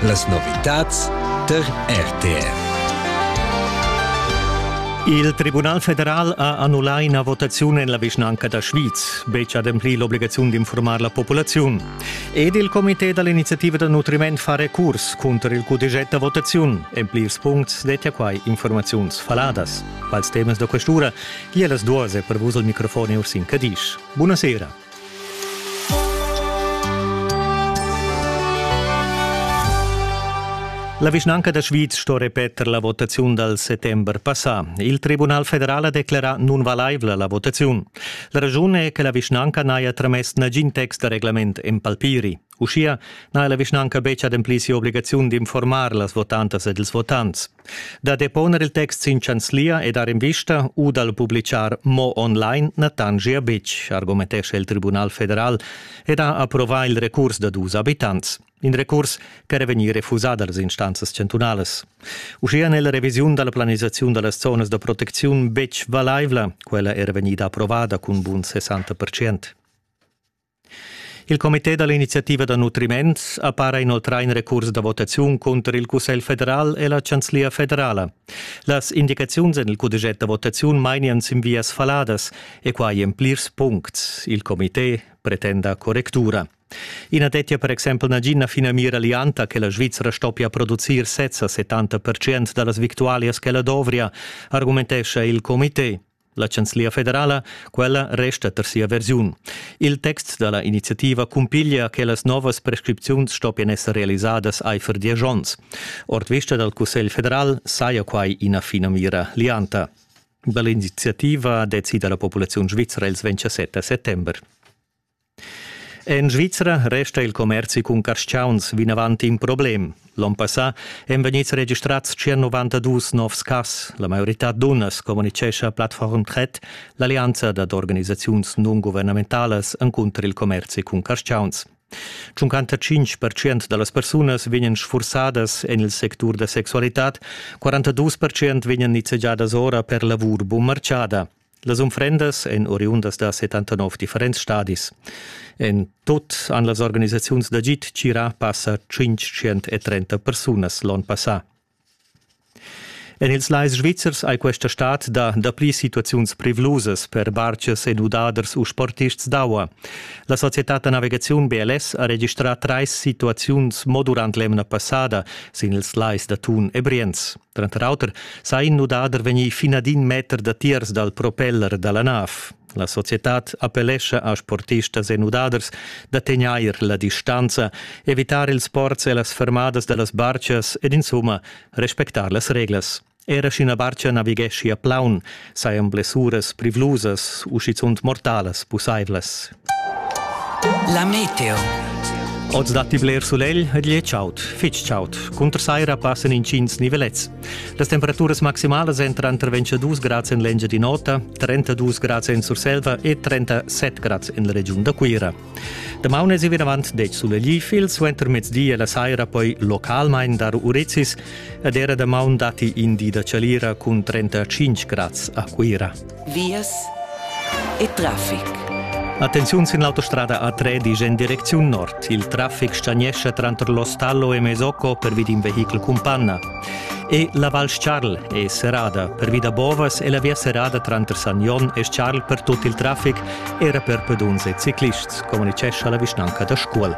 Las novitads tar RTR. Il Tribunal federal ha annullà ina votaziun en la vischnanca da Schwyz, betg ademplì l'obligaziun d'informar la populaziun. Ed il comité da l'iniziativa da nutriment fa recurs cunter il cudeget da votaziun. En plirs puncts dettia quai informaziuns faladas. Pals temas da questura gia las duas è per vus il microfon Ursin Cadisch. Buonasera. La vischnanca da Sviz sto repeter la votaziun dal settember passà. Il Tribunal federal ha declerà nunvalaivla la votaziun. La raschun è che la vischnanca n'haja tramess nagin text da reglament en palpiri. Uschia n'ha la vischnanca betg ademplì sia obligaziun d'informar las votantas ed ils votants. Da deponer il text sin chanzlia e dar invista u dal publichar mo online na tangia betg, argumentescha il Tribunal federal ed ha approvà il recurs da dus abitants. In recurs ch'era vegnì refusà dals instanzas chantunalas. Uschia n'è la revisiun da la planisaziun da las zonas da protecziun betg valaivla, quella era vegnida approvada cun bun 60%. Il comité da l'iniziativa da nutriment ha para inoltrà in recurs da votaziun cunter il Cussegl federal e la Chanzlia federala. Las indicaziuns en il cudeget da votaziun mainian sin vias faladas e quai en plirs puncts. Il comité pretenda correctura. I na dettia per exempel nagina finamira lianta che la Svizra stoppia producir sezza 70% da las victualias ch'ella dovria, argumentescha il comité. La chanzlia federala, quella resta per sia versiun. Il text dalla iniziativa cumpiglia che las novas prescripziuns stoppien esser realisadas eifer diesch onns. Ord vista dal Cussegl federal saja quai ina finamira lianta. Dall'iniziativa decida la populaziun svizra ils 27 settember. En Svizra resta il commerzi cun carstgauns vinavant in problem. L'onn passà èn vegnids registrads 192 novs cas. La maioritad dunnas communitgescha Plattform Tret, l'allianza dad organisaziuns non-guvernementalas encunter il commerzi cun carstgauns. 55% da las persunas vegnan sfursadas en il sectur da sexualitad, 42% vegnan nizzegiadas ora per lavur bunmarcada. Las unfrendas èn oriundas da 79 differents stadis. En tut han las organisaziuns d'agid tgirà passa 530 persunas l'onn passà. En ils lais svizzers hai questa stad dà dapli situaziuns privlusas per bartgers e nudaders u sportists d'aua. La societad da navigaziun BLS ha registrà trais situaziuns mo durant l'emna passada sin ils lais da Thun e Brienz. Tranter auter sa in nudader vegnir finadin meter datiers dal propeller da la nav. La societad appellescha a sportistas e nudaders da tegnair la distanza, evitar ils sports e las fermadas da las barchas ed insumma respectar las reglas. Era sch'ina barcha navigheschi a plaun, sajan blessuras privlusas u schizunt mortalas pussaivlas. La meteo. Oz datti bler sulegl ed gliez chaud, fitg chaud. Cunter saira passan intgins nivelets. Las temperaturas maximalas èn tranter 22 grads en l'Engiadin'Ota, 32 grads en Surselva e 37 grads en la regiun da Cuira. Damaun è vinavant dec sulegl, il suentermezdi e la saira poi localmain dar urizis ed era damaun datti in di da chalira cun 35 grads a Cuira. vias e traffic. Attenziun sin l'autostrada A3 disch en direcziun nord. Il traffic stagnescha tranter l'Ostallo e Mesocco per vi d'in vehichel cumpanna. E la Val Charl è serrada per vi da Bovas e la via serrada tranter San Jon e Charl per tut il traffic era per peduns e ciclists, communicescha la vischnanca da Scuol.